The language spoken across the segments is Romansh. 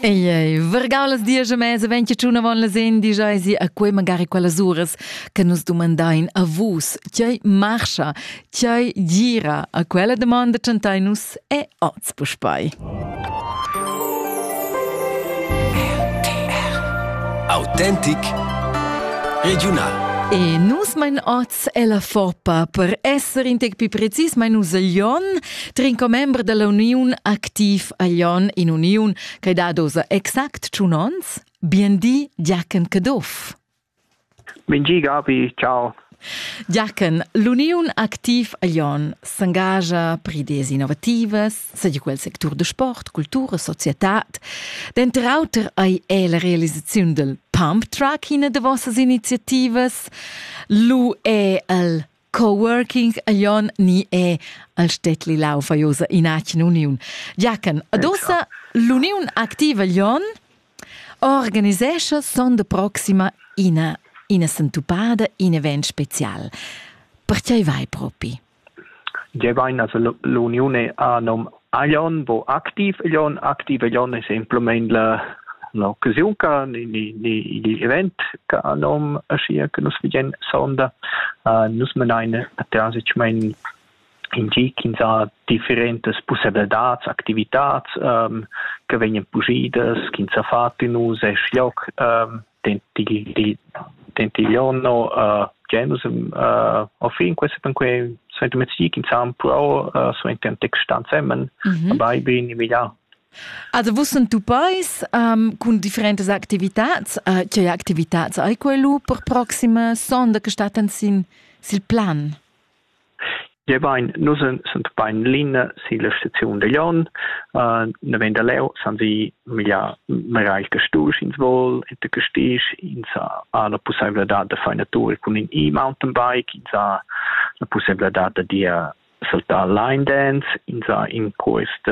Ei ei vargau las dias a mesa vegn che tuna von las endi jaisi a quei magari quellas uras che nus dumandein a vus tgei marscha, tgei gira a quella domanda tschantai nus e oz puspei. Autentic Regional E nus mein oz è la Foppa. Per esser in tec più precis, ma in usaglion, trin commember della uniun Activ Aglion in uniun che da dosa exact tschun ons, Biendi Giachen Caduff. Bengi Gabi, ciao. Giachen, l'uniun Activ Aglion s'engagia pri des innovativas, seigi quel sectur de sport, cultura, societad. Denter auter ei è la realisaziun del pump truck ina de vossas iniziativas. Lu è el coworking aion ni è al Städtli Laufa Josa in Achen Uniun. Giachen, adossa l'uniun activa Jon organisescha son de proxima ina ina sentupada, in event special. Perchei vai propi? Gevain as l'uniun a nom Aion vo activ igl on. Activ igl on es simplamaing la l'occasiun ca igl event ch'a ha nom aschia che nus vegin sonda. Nus manain natüralmaing in gi chi ins ha differentas pussaivladads, activitats che vegnan pujidas, chi ins ha fat ün us esch lloc. Tentigliono uh, genus uh, au fin questa pan que sento mezzic in san pro uh, so in ten text stand semen mm -hmm. bei bin emilia Also vus sunt tu pais um, cun differentas activitats, uh, che activitats hai quello per proxima sonda che staten sin sil plan? Gebain, nus sun bain l'ina silla staziun da Jon. Na vegn da leu san vi migliar magari castus ins vol e da castis ins ha la pussebladad da far natura cun in e-mountainbike, ins ha la pussebladad da dir saltar line dance, ins ha in quest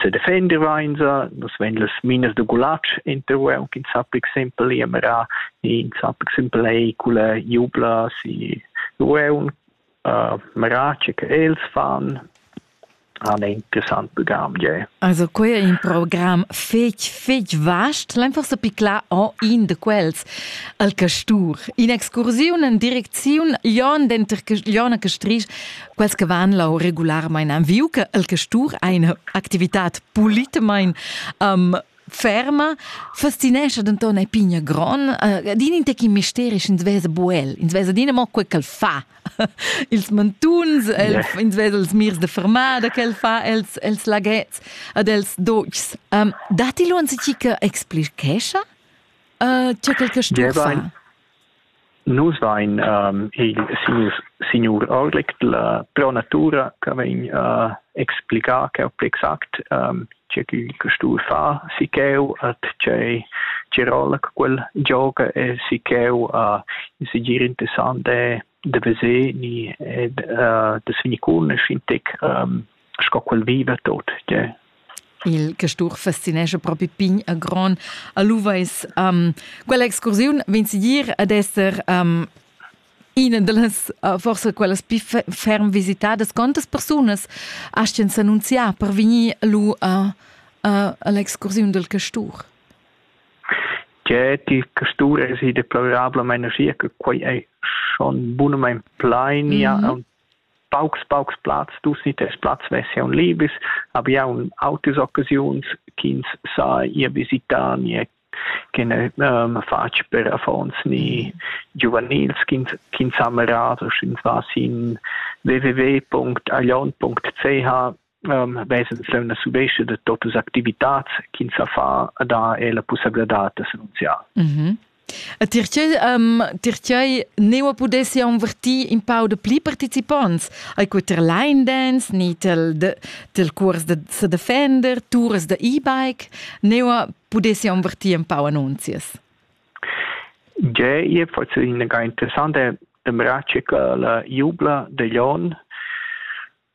sedefender vainsa, nus vegn las minas da gulatsch intervue, aunc in sappic simpel, iamera, in sappic simpel eicule, jubla, si rueun, uh, merace che els fan, han interessant program, yeah. Also quei è un program fetg, fetg vast, l'enfar sa picla en in de quels, al Castur. In excursiun en direcziun Jon denter Jon a Castrisch quels che van lau regularmein an viu che el che stur eine activitat politemain um, ferma fascinescha denton ei pigna gron uh, din in tecin misterisch ins vesa buel ins vesa din mo quei ch'el fa ils mantuns el, yeah. ins vesa els mirs de fermada ch'el fa els els lagets ad els dogs um, dati lu uns ti che explichescha uh, eh, ce quel che stur fa Nus vain il signur Orlicht, la pro natura cha vegn explichà ch'eu pli exact che chi stun fa si ch'eu a tgei tge rolla che quel gioga e si ch'eu a segir interessant è da veser ni e da senicunasch in tec sco quel viva tot tgei il castur fascinescha propi pign a gron a Luveis. Um, quella excursiun vegn segir ad esser um, ina dallas uh, forsa quellas più ferm visitadas. Quantas persunas astien s'annunziar per vegnir lu a, a, all'excursiun del castur? Tgè ti custura es i deplorablamein aschia che quei ei schon bunamein plainia mm -hmm. aunc paucs paucs plazs tu si tes plaz vessi aun libis aber ja un autis occasiuns ch'ins sa ir visitar ni che ne um, fatg per affons ni giuvenils ch'ins ch'ins ha merado sch'ins va sin www.alion.ch vesa la subescia da totas activitats ch'ins sa fa e da è la pussabladad d'annunziar. Mm -hmm. E pertgei, um, pertgei neu pudessi anvertir in pau de pli participants ai co tir line dance ni tel, de, tel curs de sedefender, tours de e-bike, neu pudessi anvertir un pau annunzias. Ja, je forse una interessante braccia che la jubla de Lyon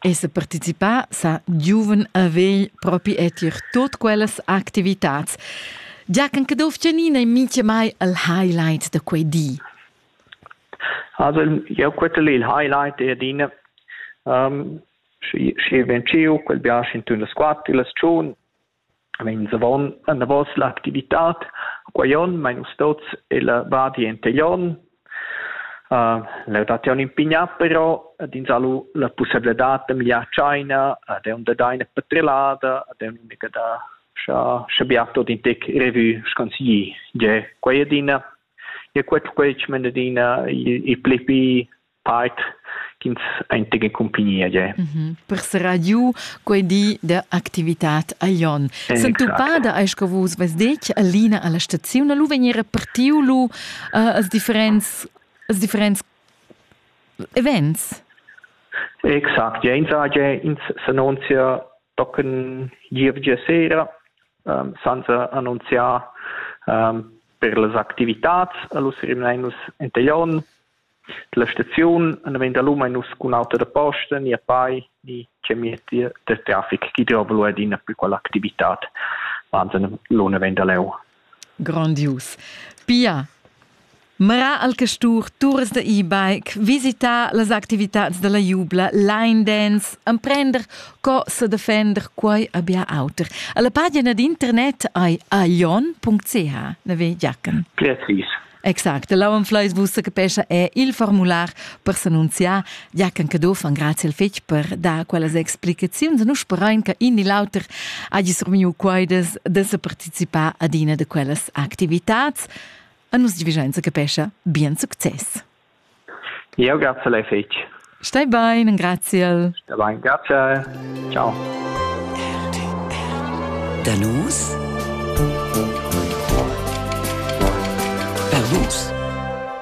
Esser participà sa giuven a vegl propi e tier tut quellas activitats. Giachen Caduff Gianina è mincha mai il highlight da quei di. Also jeu quetel il highlight è adina. Um, schi, schi vegn giu, quel biasch in tun las quatt, las tschun, Meins avon anavos l'activitad, quei onn mein nus tuts ella Val Enteglion. La datiun impigna però ad ins ha lu la pussebladad da migliar tscheina, ad aunc da dar ina petrellada, ad aunc mica da scha scha bia tot in tec revue sconsigli. Gie, quei adina. E quei quei menda adina il il pli pli Part ch'ins ein tec en cumpagnia je. Mm -hmm. Per serrar giu quei di da activitat a Jon. Sentupada ei sco vus vess detg Alina alla staziun a lu vegnir repartiu lu uh, als differents als differents events. Exakt, ja, ins age ins s'annunzia tochen gievgia sera um, senza annunziar um, per las activitats. Allus rimnein nus entaglion La staziun na vegn dalum eir nus cun auto da posta ni a pai ni che mietti da trafic chi giova lura adina plü quella activitat. Wahnsinn, lò na vegn da leu. Grandius. Pia, mra al castur turas da e-bike, visitar las activitads da la jubla, line dance, emprender co sa defender, quai abia auter. A la pagina d'internet ai aion.ch, na ve Giachen? Precis. Exact, l'auan fleis vus capescha è il formular per s'annunziar, ja can Caduff an grazie al fetg per dar quellas explicaziuns. Nus sperain che in ni l'auter hagi surmiu quaidas de se participar ad ina de quellas activitats. A nus divigenza capescha bien success. Jeu graziel ei fetg. Stai bein, engraziel. Stai bein, graziel. Ciao. Da nus per vus.